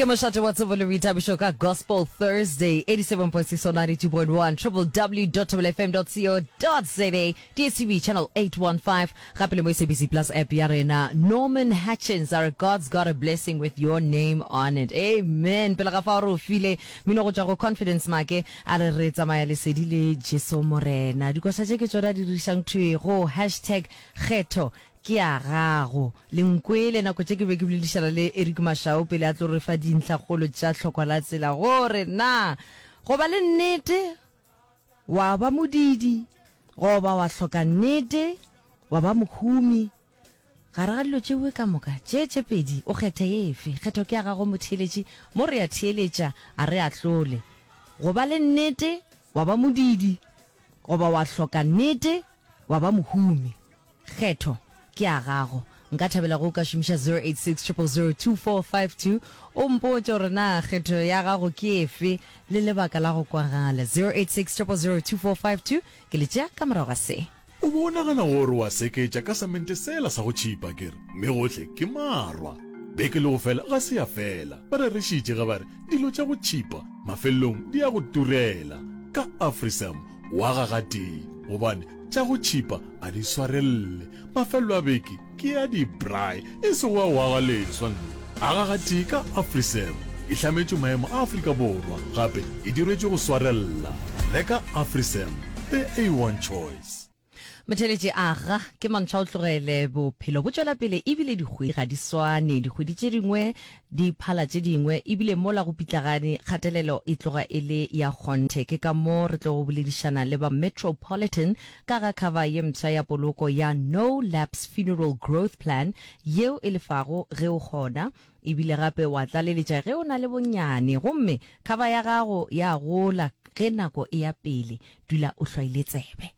ke mošate wa tsebo le boithabišo ka gospel thursday 87.6 or 92.1 www.wfm.co.za dstv channel 815 gape le mo sabc plus app ya rena norman hatchins are god's got a blessing with your name on it amen pele ga fa re o file mino go tšwa go confidence make a re re tsamaya lesedi le jesu morena dikoša tše ke tsona di dirišang thwego hashtag kgetho Ke a gago. Le nkwele, nako tše ke be ke boledišana le Eric Mashau pele a tlo re fa dintlhakgolo tša tlhokwa la tsela gore na go ba le nnete wa ba modidi goba wa hloka nnete wa ba mohumi. Gare ga dilo tšeo ka moka tše tše pedi, o kgetha efe? Kgetho ke ya gago motheeletši. Mo re a theeletša, a re ahlole. Go ba le nnete wa ba modidi goba wa hloka nnete wa ba mohumi. Kgetho ke a gago. Nka thabela ge o ka šomiša 0860002452 o mpotše gore na kgetho ya gago ke efe le lebaka la go kwagala. 0860002452 ke le tšea ka morago ga se. O be o nagana gore wa seketša ka samente sela sa go tšhipa, ke re, mme gohle ke marwa. Beke le go fela ga se ya fela, ba rerišitše ge ba re dilo tša go tšhipa mafelelong di ya go turela. Ka Afrisam wa ga gatee gobane tša go tšhipa a di swarelele mafelelo a beke ke ya dibrae e sego a wa ga leswa nne a ga gatee ka afriseb e hlametše maemo a afrika borwa gape e diretše go swarelela reka afriseb the a one choice Motheletši, Aga, ke mantshwa o tlogele. Bophelo bo tšwela pele ebile dikgwedi ga di swane. Dikgwedi tše dingwe di phala tše dingwe ebile mola go pitlagane kgatelelo e tloga e le ya kgonthe. Ke ka mo re tlogo boledišana le ba Metropolitan ka ga cover ye mpsha ya poloko ya No Lapse Funeral Growth Plan yeo e lefago ge o kgona E bile gape wa tlaleletša ge o na le bonnyane gomme kgaba ya gago ya gola ge nako e ya pele. Dula o hlwaile tsebe.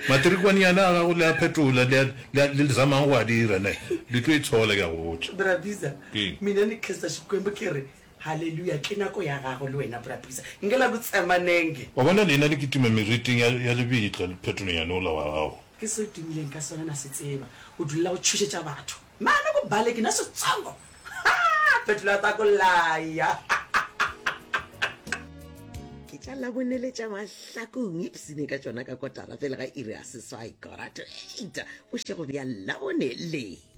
Matrikwane yana a gago le a phetola le le le zamang go a dira ne le tlo e tshola ke a go botša. Bra Biza, Keng? mina ni Kester Xikwembu ke re Haleluya! Ke nako ya gago le wena, Bra Prisa. Ngela ku tsema nenge. Wa bona, leina le kitima meriting ya, ya lebitla lephetolong yane ola wa gago. Ke se o timileng ka sona, na se tseba. O dulela go tšhošetša batho. Mane ko bale, ke na setsongo. Ha! Phetolo ya tako laya. Ke tla laboneletša mahlakong, ipsine ka tšona ka kotara pele ga iri ya seswai, kora to eita, bošego bja Labone le.